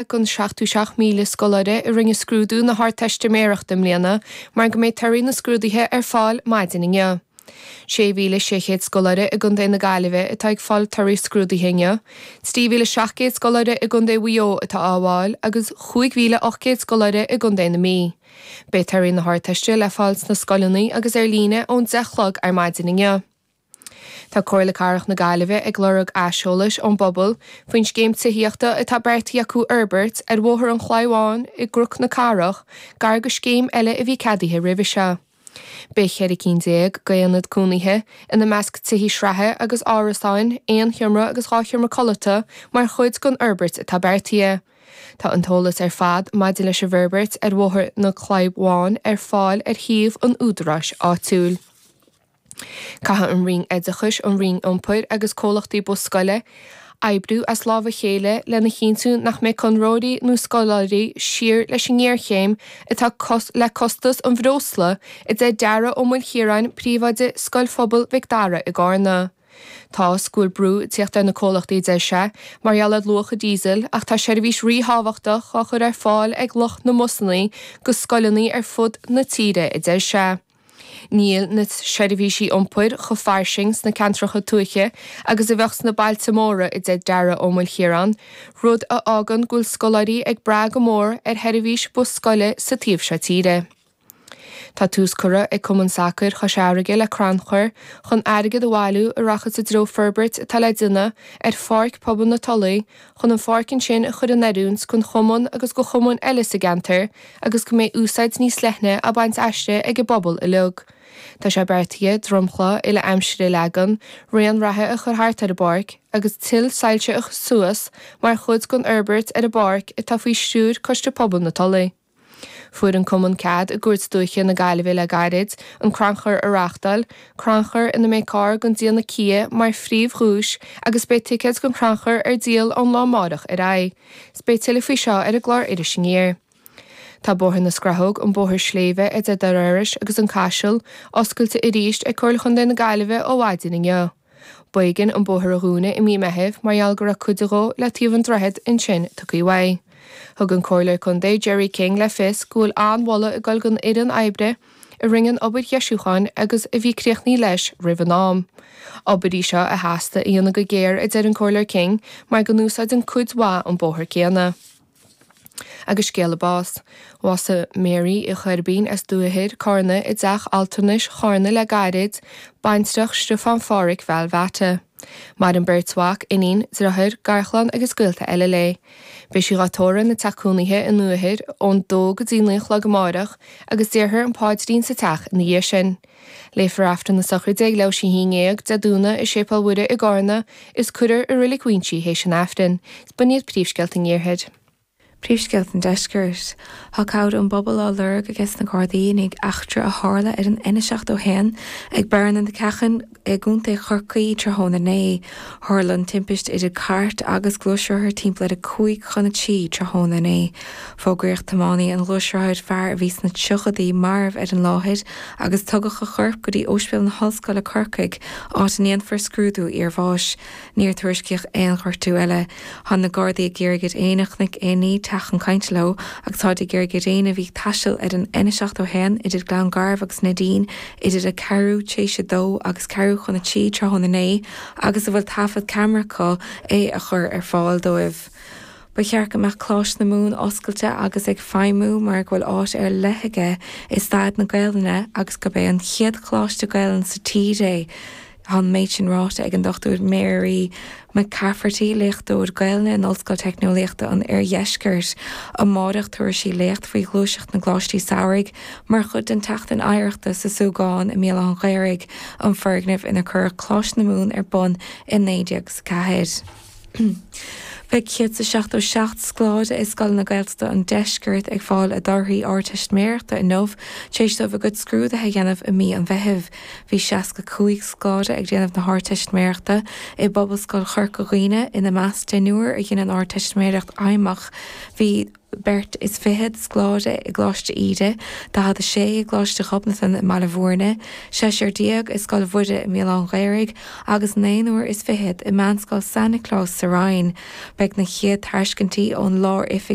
ag an 77,000 scoláire a rinne scrúdú na hArdteistiméireachta i mbliana, mar go mbeidh torthaí na scrúduithe ar fáil maidin inniu. 6,600 scoláire i gContae na Gaillimhe atá ag fáil torthaí scrúduithe inniu, 3,700 scoláire i gContae Mhaigh Eo atá á bhfáil agus 5,800 scoláire i gContae na Mí. Beidh torthaí na hArdteiste le fáil sna scoileanna agus ar líne ón 10 a chlog ar maidin inniu. Tá Comhairle Cathrach na Gaillimhe ag lorg aiseolais ón bpobal faoin scéim tithíochta atá beartaithe acu a fhorbairt ar Bhóthar an Chlabháin i gCnoc na Cathrach gar go scéim eile a bhí ceadaithe roimhe seo. Beidh ceithre cinn déag d'aonaid cónaithe, ina measc tithe sraithe agus árasáin aon sheomra agus dhá sheomra codlata mar chuid den fhorbairt atá beartaithe. Tá an t-eolas ar fad maidir leis an bhforbairt ar Bhóthar an Chlabháin ar fáil ar shuíomh an údaráis áitiúil. Caithfidh an Roinn Oideachais, an Roinn Iompair agus comhlachtaí bus scoile oibriú as lámh a chéile lena chinntiú nach mbeidh conraitheoirí nó scoláirí thíos leis an ngéarchéim atá le costas an bhreosla, a deir Dara Ó Maoilchiaráin, príomhoide Scoil Phobail Mhic Dara i gCarna. Tá, school, brú ag tíocht ar na comhlachtaí, a deir sé, mar gheall ar luach an díosal ach tá seirbhís ríthábhachtach á chur ar fáil ag lucht na mbusanna go scoileanna ar fud na tíre, a deir sé. Níl na seirbhísí iompair chomh fairsing sna ceantracha tuaithe agus a bheadh sna bailte móra a deir Dara Ó Maoilchiaráin, rud a fhágann go bhfuil scoláirí ag brath go mór ar sheirbhís bus scoile sa taobh seo tíre. Tá tús curtha ag Cumann Sacair Chois Fharraige le crannchur chun airgead a bhailiú a rachaidh i dtreo forbairt atá le déanamh ar Pháirc Pobail na Tulaí, chun an pháirc ansin a chur in oiriúint don chumann agus go chumainn eile sa gceantar agus go mbeidh úsáid níos leithne á baint aisti ag an bpobal uilig. Tá sé beartaithe dromchla uile-aimsire a leagan, raon reatha a chur thart ar an bpáirc agus tuilsoilse a chur suas mar chuid den fhorbairt ar an bpáirc atá faoi stiúir Coiste Pobail na Tulaí. Fuair an Cumann cead i gCúirt Dúiche na Gaillimhe le gairid an crannchur a reáchtáil, crannchur ina mbeidh carr den déanamh Kia mar phríomhdhuais agus beidh ticéid don chrannchur ar díol ón lá amárach ar aghaidh. Beidh tuilleadh faoi seo ar an gclár Iris Aniar. Tá Bóthar na Scrathóg, an bóthar sléibhe idir Doire Iorrais agus an Caiseal, oscailte arís ag Comhairle Chontae na Gaillimhe ó mhaidin inniu. B'éigean an bóthar a dhúnadh i mí Meithimh mar gheall go raibh cuid dhó le taobh an droichead ansin tugtha uaidh. Thug an Comhairleoir Contae Gerry King le fios go bhfuil an-mholadh ag dul don fhoireann oibre a rinne an obair dheisiúcháin agus a bhí críochnaithe leis roimh an am. Obair í seo a theastaigh a dhéanamh go géar a deir an Comhairleoir King mar go n-úsáideann cuid mhaith an bóthar céanna. agus scéala báis. Bhásaigh Mary Uí Choirbín as Dumhaigh Ithir, Carna, i dteach altranais Charna le gairid, baintreach Stiofán Pháraic Val Mheaite. Maireann beirt mhac, iníon, driotháir, garchlann agus gaolta eile léi. Beidh sí dhá tórramh ina teach cónaithe i nDumhaigh Ithir ón dó go dtí naoi a chlog amáireach agus déarthar an páidrín sa teach ina dhiaidh sin. Léifear Aifreann na sochraide ag leathuair théis a haon déag Dé Domhnaigh i Séipéal Mhuire i gCarna, is cuirear i reilig Mhuínse th'éis an Aifrinn. Is b'in iad príomhscéalta an Iarthair. Príomhscéalta an Deiscirt. Thá cabhair ón bpobal á lorg aiges na Gardaí i ndiaidh eachtra a tharla ar an N71 ag Barra na Ceachan i gContae Chorcaí tráthnóna inné. Tharla an timpist idir cairt agus gluaisrothar timpeall ar a cúig chun a trí tráthnóna inné. Fógraíodh tiománaí an ghluaisrothair, fear a bhí sna triochadaí, marbh ar an láthair. agus tugadh a chorp go dtí Óispidéal na hOllscoile Corcaigh, áit a ndéanfar scrúdú iarbháis. Níor tuairiscíodh aon ghortú eile. Thá na Gardaí ag iarraidh ar éinne a chonaic aon ní teacht chun cainte leo agus táid ag iarraidh ar éinne a bhí ag taisteal ar an N71 idir Gleann Garbh agus Neidín idir a ceathrú théis a dó agus ceathrú chun a trí tráthnóna inné agus a bhfuil taifead ceamara acu é a chur ar fáil dóibh. Ba cheart go mbeadh Coláiste na Mumhan oscailte agus ag feidhmiú mar go bhfuil áit ar leith aige i stair na Gaelainne agus gurb é an chéad choláiste Gaelainne sa tír é. Tá an méid sin ráite ag an Dr Máire McCafferty, léachtóir Gaelainne in Ollscoil Teicneolaíochta an Oirdheiscirt. Amárach tabharfaidh sí léacht faoi ghluaiseacht na gcoláistí samhraidh mar chuid den tSeachtain Oidhreachta sa Súgán i mBéal Átha an Ghaorthaidh, an foirgneamh inar cuireadh Coláiste na Mumhan ar bun i 1904. Beidh 177 scoláire i scoileanna Gaeltachta an deiscirt ag fáil a dtorthaí Ardteistiméireachta inniu tar éis dóibh a gcuid scrúduithe a dhéanamh i mí an Mheithimh. Bhí 65 scoláire ag déanamh na hArdteistiméireachta i bPobalscoil Chorca Dhuibhne, ina measc deichniúr a dhein an Ardteistiméireacht Fheidhmeach. Bhí. beirt is fichead scoláire i gColáiste Íde, 46 i gColáiste Ghobnatan i mBaile Bhúirne, seisear déag i Scoil Mhuire i mBéal Átha an Ghaorthaidh agus naonúr is fichead i Meánscoil San Nioclás sa Rinn. Beidh na chéad tairscintí ón Lár-Oifig